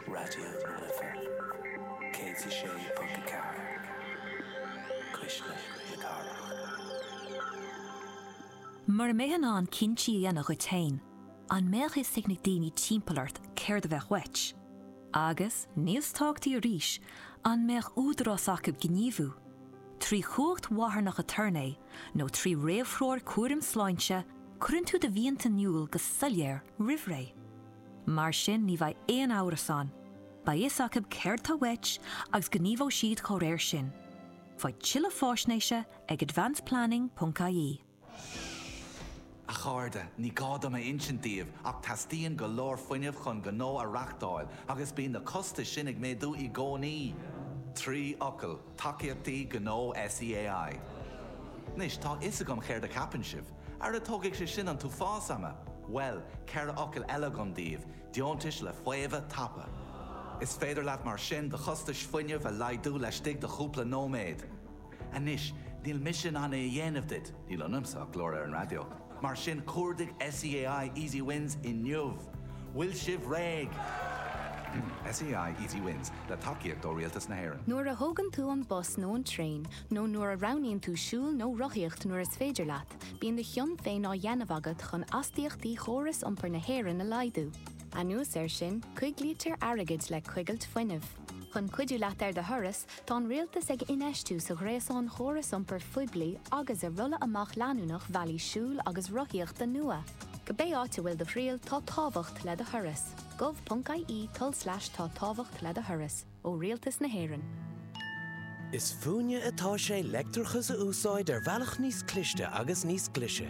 Raidió na Life 106.4 Cuisle na Cathrach. Mura mbeifeá in ann cinntí a dhéanamh dhuit féin, an mbeadh fhios ag na daoine timpeall ort céard a bheadh uait? Agus, níos tábhachtaí arís, an mbeadh údarás acu gníomhú, trí chumhacht mharthanach aturnae nó trí réamhthreoir chúraim sláinte, cuireann tú do mhianta in iúl go soiléir roimh ré. Mar sin ní bheidh aon amhras ann, beidh fhios acu céard tá uait agus gníomhóidh siad dá réir sin. Faigh tuilleadh fáisnéise ag advanceplanning.ie. A chairde, ní gá dom a insint daoibh ach teastaíonn go leor fuinnimh chun gnó a reachtáil agus bíonn na costais sin ag méadú i gcónaí! Trí fhocal. Tacaíochtaí Gnó SEAI. Anois, tá a fhios agam céard a cheapann sibh. Ara tógfaidh sé sin an t-uafás ama! Bhuel, ceithre fhocal eile agam daoibh, deontais le faomhadh tapa. Is féidir leat mar sin do chostais fuinnimh a laghdú laistigh de chúpla nóiméad. Anois, níl mise in ann é a dhéanamh duit, níl ionamsa ach glór ar an raidió. Mar sin, cuardaigh SEAI Easy Wins inniu! Bhfuil sibh réidh? SEAI Easy Wins, le tacaíocht ó Rialtas na hÉireann. Nuair a thógann tú an bus nó an traein, nó nuair a roghnaíonn tú siúl nó rothaíocht nuair is féidir leat, bíonn do chion féin á dhéanamh agat chun astaíochtaí chóras iompair na hÉireann a laghdú. Anuas air sin, coiglítear airgead le coigilt fuinnimh. Chun cuidiú leat ar do thuras, tá an Rialtas ag infheistiú sa ghréasán chóras iompair phoiblí agus i rolladh amach leanúnach bhealaí siúil agus rothaíochta nua. Cibé áit a bhfuil do thriall, tá tábhacht le do thuras. gov.ie tulslais tá tábhacht le do thuras. Ó Rialtas na hÉireann. Is fúinne atá sé leictreachas a úsáid ar bhealach níos cliste agus níos glise.